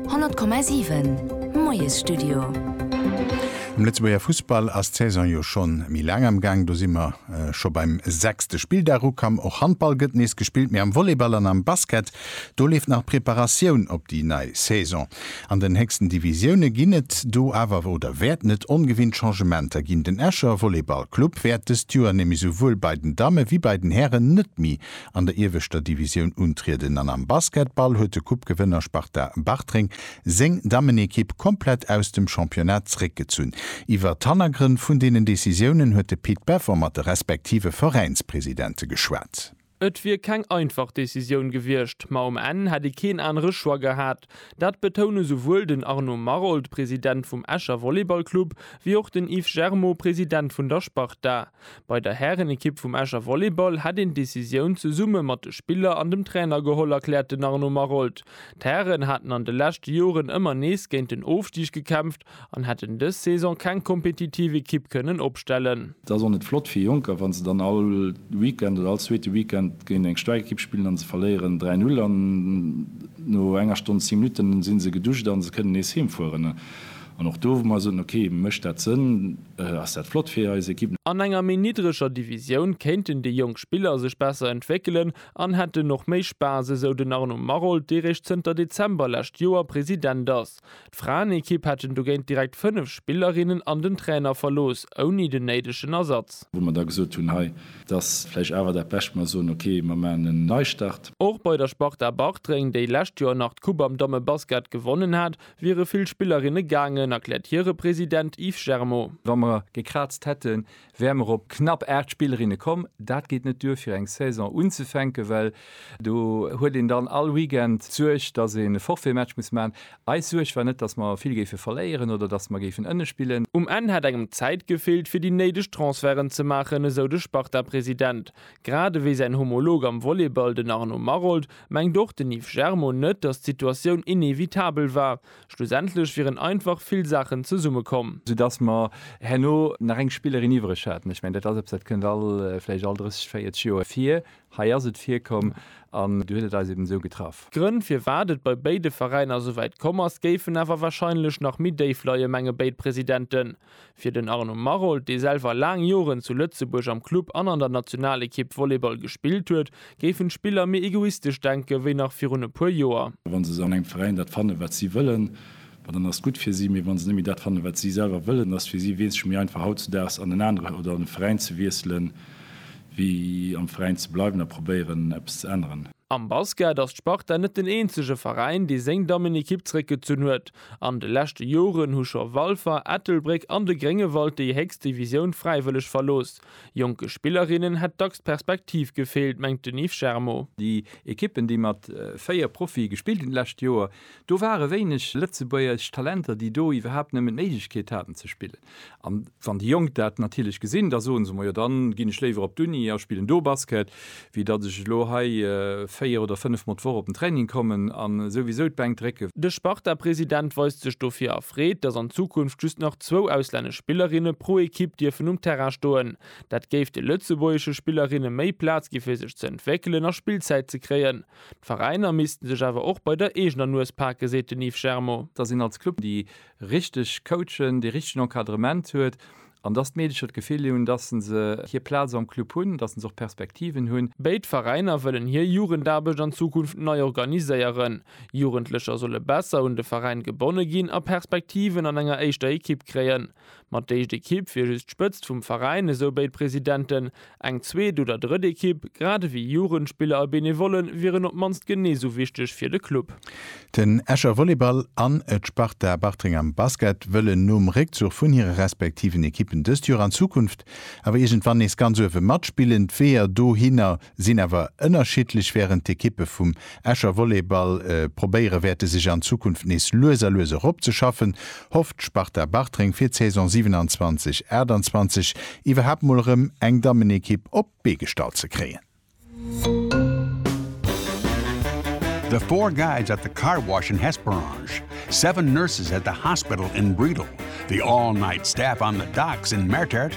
100,7 Moiesstudio. Am Lëtzebuerger Fussball ass d'Saison jo scho méi laang am Gaang. Do si mer scho beim sechste Spilldag ukamm. Och Handball gëtt nees gespillt, mee am Volleyball an am Basket, do leeft nach d'Preparatioun op déi nei Saison. An den héchsten Divisioune ginn et do awer oder wäerten et ongewinnt Changementer ginn. Den Escher Volleyballclub wäert dëst Joer nämlech souwuel bei den Damme wéi bei den Hären net méi an der ieweschter Divisioun untrieden an am Basketball huet de Coupe-Gewënner Sparta Bartreng seng Dammenekipp komplett aus dem Championnat zréckgezunn. Iwwert d'Hannergrënn vun deenen Decisiounen huet de Pit Beffer mat de respektive Veräinspresidente geschwat. Et wier keng einfach Decisioun gewiescht, ma um Enn hätt ee keen anere Choix gehat. Dat betoune souwuel den Arnaud Maroldt, President vum Escher Volleyballclub, wéi och den Yves Germaud, President vun der Sparta. Bei der Härenekipp vum Escher Volleyball hätt een d'Decisioun zesumme mat de Spiller an dem Trainer geholl, erkläert den Arnaud Maroldt. D'Hären hätten an de leschte Joren ëmmer nees géint den Ofstig gekämpft an hätten dës Saison keng kompetitiv Ekipp kënnen opstellen. Et ass och net flott fir Jonker, wa se dann all Weekend oder all zweete Weekend géint eng staark Ekipp spillen an se verléieren 3, 0 an no enger Stonn 10 Minutten si se geduscht an se kënnen nees heemfueren. An och do, wou mer soen, ok, mécht dat Sënn, ass dat flott fir eis Ekipp. An enger méi niddreger Divisioun kéinten déi jonk Spiller sech besser entwéckelen an hätten och méi Spaass, esou den Arnaud Maroldt, dee réischt zënter Dezember lescht Joer President ass. D'Fraenekipp hätten dogéint direkt 5 Spillerinnen an den Trainer verlooss, ouni den néidegen Ersatz. Wou mer da gesot hunn, hei, et ass vläicht awer dat Bescht, mer soen, ok, mer maachen en Neistart. Och bei der Sparta Bartreng, déi lescht Joer nach d'Coupe am Dammebasket gewonnen hat, Wiere vill Spillerinne gaangen, erkläert hire President Yves Germo. Wa mer gekraazt hätten, wäre mer op knapp 8 Spillerinne komm. Dat geet net duer fir eng Saison unzefänken, well do huet een dann all Weekend d'Suerg, datt een e Forfaitmatch muss maachen. Eis Suerg war net, datt mer vill géife verléieren oder datt mer géifen ënne spillen. Um Enn hätt engem d'Zäit gefeelt, fir déi néideg Transferten ze maachen, esou de Sparta-President. Grad ewéi säin Homolog am Volleyball, den Arnaud Maroldt, Mengt och den Yves Germo net, datt d'Situatioun inevitabel war. Schlussendlech wieren einfach vill Saachen zesummekomm. Soudass mer herno nach eng Spillerin iwwereg haten. Ech mengen, dat ass eppes, dat kënnt all, vläicht all 30, 40 Joer vir. Hei ass et virkomm an du huet et eis eben esou getraff. D'Grënn, firwat et bei béide Veräiner souwäit komm ass, géifen awer warscheinlech nach méi déif leien, menge béid Presidenten. Fir den Arnaud Maroldt, dee selwer laang Joren zu Lëtzebuerg am Club an an der Nationalekipp Volleyball gespillt huet, géifen d'Spiller méi egoistesch denken, wéi nach virun e puer Joer. Wa se an engem Veräin dat fannen, wat si wëllen, ma dann ass gutt fir si. Mee wa se net méi dat fannen, wat si selwer wëllen, ass et fir si weesseg méi einfach hautzedaags an en anere oder an e Veräin ze wiesselen, wéi am Veräin ze bleiwen a probéieren, eppes ze änneren. Am Basket ass d'Sparta net den eenzege Veräin, dee seng Dammenekipp zeréckgezunn huet. An de leschte Joren hu scho Walfer, Ettelbréck an de Gréngewald déi héchst Divisioun fräiwëlleg verlooss. Jonke Spillerinnen hätt dacks d'Perspektiv gefeelt, mengt den Yves Germo. Déi Ekippen, déi mat 4 Profie gespillt hunn d'lescht Joer, do ware wéineg lëtzebuergesch Talenter, déi do iwwerhaapt nëmmen d'Méiglechkeet haten ze spillen. An wann déi Jonk dat natierlech gesinn, da soe se, Majo, dann ginn ech léiwer op d'Uni a spillen do Basket, wéi datt ech elo hei véier oder fënnef Mol d'Woch op den Training kommen a souwisou d'Bänk drécken. De Sparta-President weist sech dofir erfreet, datt an Zukunft just nach zwou auslännesch Spillerinne pro Ekipp dierfen um Terrain stoen. Dat géif de lëtzebuergesche Spillerinne méi Plaz gi fir sech ze entwéckelen a Spillzäit ze kréien. D'Veräiner missten sech awer och bei der eegener Nues pake, seet den Yves Germo. Datt een als Club déi richteg coachen, dee richtegen Encadrement huet an dass d'Meedecher d'Gefill hunn, dass se se hir Plaz am Club hunn, dass se och Perspektiven hunn. Béid Veräiner wëllen hir Jugendaarbecht an Zukunft nei organiséieren. Jugendlecher solle besser un de Veräin gebonne ginn a Perspektiven an enger éischter Ekipp kréien. Mat d'éischt Ekipp wier just d'Spëtzt vum Veräin, esou béid Presidenten. Eng zweet oder drëtt Ekipp, grad ewéi Jugendspiller a Benevolle wieren op d'mannst genee sou wichteg fir de Club. Den Escher Volleyball an d'Sparta Bartreng am Basket wëllen nom Réckzuch vun hire respektiven Ekippen dëst Joer an Zukunft awer iergendwann nees ganz uewe matspillen. D'Weeër dohinner sinn awer ënnerschiddlech, wärend d'Ekippe vum Escher Volleyball probéiere wäerte sech an Zukunft nees lues a lues eropzeschaffen, hofft d'Sparta Bartreng fir d'Saison 27, 28 iwwerhaapt mol erëm eng Dammenekipp op d'Bee gestallt ze kréien. The Four Guys at the Car Wash in Hesperange, Seven Nurses at the Hospital in Bredel, The All Night Staff on the Docks in Mertert,